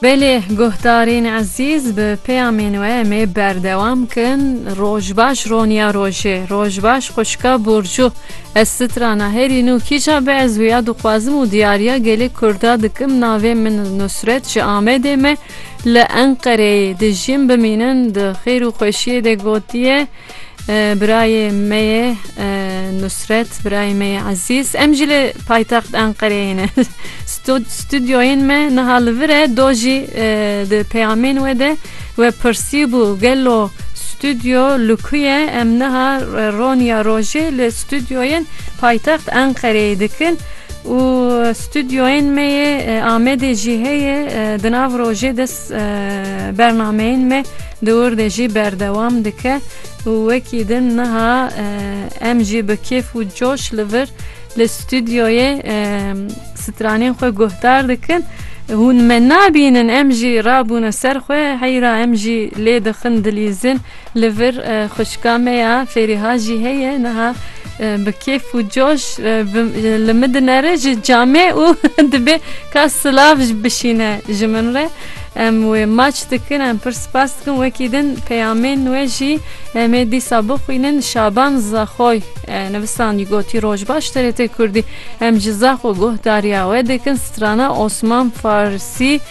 Belê guhdarên ezîz bi peyamên we em ê berdewam kin. Roj baş Roniya Rojê, Roj baş xwişka Burcu. Ez strana herî nû kîja bi ez wîya dixwazim û diyariya gelê Kurda dikim navê min Nusret ji Amedê me li Enqereyê dijîm bimînin di xêr û xweşiyê de gotiye, Birayê me ye Nusret, birayê me ye Ezîz. Em jî li paytext Enqereyê ne. Stûdyoyên me niha li vir e, do jî di peyamên we de we pirsîbû gelo stûdyo li ku ye? Em niha roniya rojê li stûdyoyên paytext Enqereyê dikin û stûdyoyên me yê Amedê jî heye di nav rojê de Bernameyên me di wir de jî berdewam dike û wekî din niha em jî bi kêf û coş li vir li stûdyoyê stranên xwe guhdar dikin. Hûn me nabînin em jî rabûne ser xwe heyra em jî lê dixin dilîzin. Li vir xwişka me ya Fêrîha jî heye niha bi kêf û coş li min dinere ji camê û dibê ka silav bişîne ji min re. Em wê maç dikin, em pir spas dikin wekî din peyamên wê jî em ê dîsa bixwînin. Şaban Zaxoy nivîsandî gotî Roj baş TRT Kurdî em ji Zaxo guhdariya we dikin strana Osman Farsî.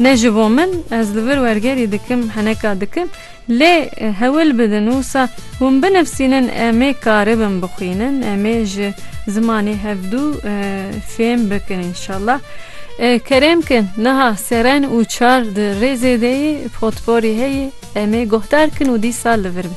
Ne ji bo min, ez li vir wergerî dikim, heneka dikim, lê hewil bidin wisa hûn binivsînin emê karibin bixwînin, emê ji zimanê hevdû fêm bikin înşallah. Kerem kin, niha seren û çar di rêzê de yê, potporî heye, emê guhdar kin û dîsa li vir be.